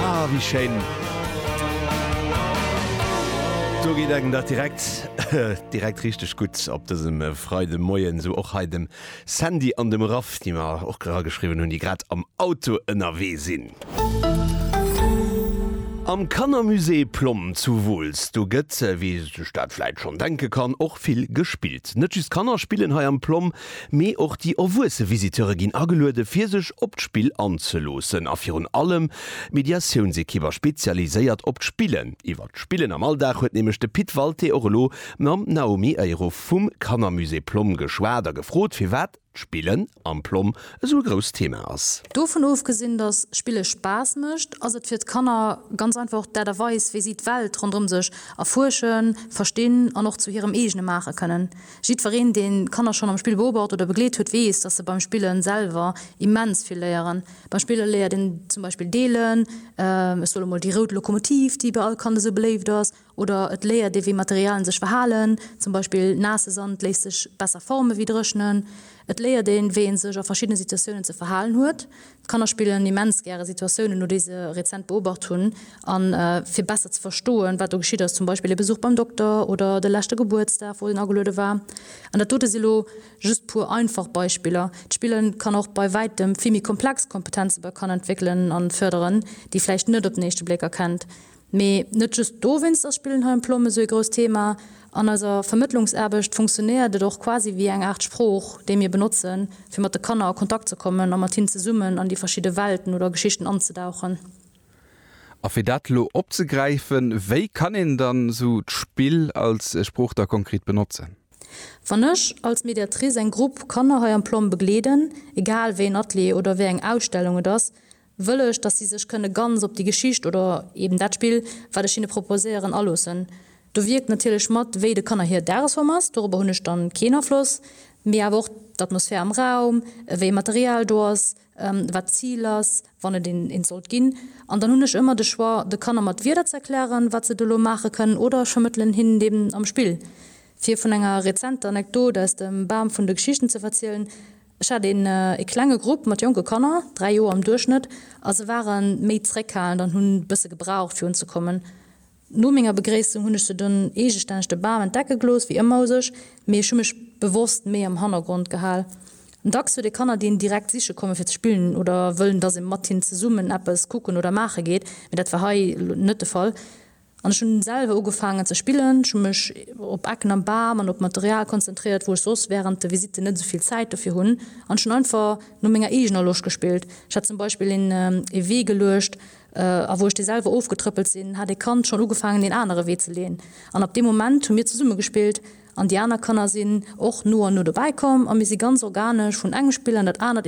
Ah wéi schéin. Do geet engem dat direkt direkt richteg gutt op dësem Freidemoien. Esou och hei dem Sandy an dem Raph, déi mer och era geschriwwen hunn, déi grad am Auto ënnerwee sinn. Am Kannermusée Plomm zu Wooltz, do gëtt, wéi ee sech dat vläit schonn denke kann, och vill gespillt. Net just d'Kanner spillen hei am Plomm. Mee och déi erwuesse Visiteure ginn ageluede fir sech op d'Spill anzeloossen. A virun allem d'Mediatiounsekipp a spezialiséiert op d'Spillen. Iwwer d'Spillen am Alldag huet nämlech de Pit Walté och elo mam Naomi Eyruff vum Kannermusée Plomm geschwat a gefrot firwat d'Spillen am Plomm esou e grousst Thema ass. Dovun ofgesinn, datt Spille Spaass mécht, ass et fir d'Kanner ganz einfach och d'Aart a Weis wéi si d'Welt ronderëm sech erfuerschen, verstinn an och zu hirem eegene maache kënnen. Jiddwereen, deen d'Kanner schonn am Spill beobacht oder begleet huet, weess, dass se beim Spillen selwer immens vill léieren. Beim Spillen léiert een zum Beispill deelen, ech soll emol déi rout Lokomotiv, déi bei all Kand esou beléift ass, oder et léiert ee wéi Materialien sech verhalen, zum Beispill naasse Sand léisst sech besser forme wéi dréchnen. Et léiert een, wéi een sech a verschiddene Situatiounen ze verhalen huet, D'Kanner spillen immens gäre Situatiounen no, déi se rezent beobacht hunn. A fir besser ze verstoen, wat do geschitt ass, zum Beispill e Besuch beim Dokter oder de leschte Gebuertsdag, wou en ageluede war. An dat dote si lo just puer einfach Beispiller. D'Spille kann och bei wäitem vill méi komplex Kompetenze bei Kanner entwéckelen a fërderen, déi vläicht net op den éischte Bléck erkennt. Mee net just dowéinst ass Spillen hei um Plom esou ee grousst Thema. An eiser Vermëttlungsaarbecht funktionéiert et och quasi wéi eng Aart Sprooch, déi mir benotzen, fir mat de Kanner a Kontakt ze kommen a mat hinnen zesummen an déi verschidde Welten oder Geschichten anzedauchen. A fir dat elo opzegräifen, wéi kann een dann esou d'Spill als Sprooch da konkret benotzen? Wann ech als Mediatrice eng Grupp Kanner hei am Plom begleeden, egal wéi een Atelier oder wéi eng Ausstellung et ass, wëll ech, dass si sech kënne ganz op déi Geschicht oder eben dat Spill, wat ech hinne proposéieren, aloossen. Do wierkt natierlech mat, wéi de Kanner hir Dagesform ass, dorobber hunn ech dann keen Afloss, mee awer och d'Atmosphär am Raum, wéi e Material do ass, wat d'Zil ass, wann et eent sollt ginn. An dann hunn ech ëmmer de Choix, de Kanner mat Wierder ze erklären, wat se do elo maache kënnen, oder ech vermëttelen hinnen eben am Spill. Fir vun enger rezenter Anekdot aus dem Bam vun de Geschichten ze verzielen, Ech hat een ee klenge Grupp mat jonke Kanner, 3 Joer am Duerchschnëtt, a se ware méi zréckhalend an hunn bësse gebraucht fir unzekommen. No menger Begréissung hunn ech se dunn eegestänneg de Bam entdecke gelooss, wéi ëmmer u sech, mee ech hu mech bewosst méi am Hannergrond gehal. Dacks huet ee Kanner, déi een direkt siche komme fir ze spillen oder wëllen, dass ee mat hinnen zesummen eppes kucken oder maache geet, mee dat war hei elo net de Fall. An ech hunn selwer ugefaangen ze spillen. Ech hunn mech op Ecken am Bam an op Material konzentréiert, wou ech soss wärend de Visitten net esou vill Zäit dofir hunn, an ech hunn einfach no menger eegener Loscht gespillt. Ech hat zum Beispill een ee Wee geluecht, a wou ech dee selwer ofgetrëppelt sinn, hat ee Kand schonn ugefaangen een anere Wee ze leeën. An ab deem Moment hu mir zesumme gespillt an déi aner Kanner sinn och no an no dobäi komm a mir si ganz organesch vun engem Spill an dat anert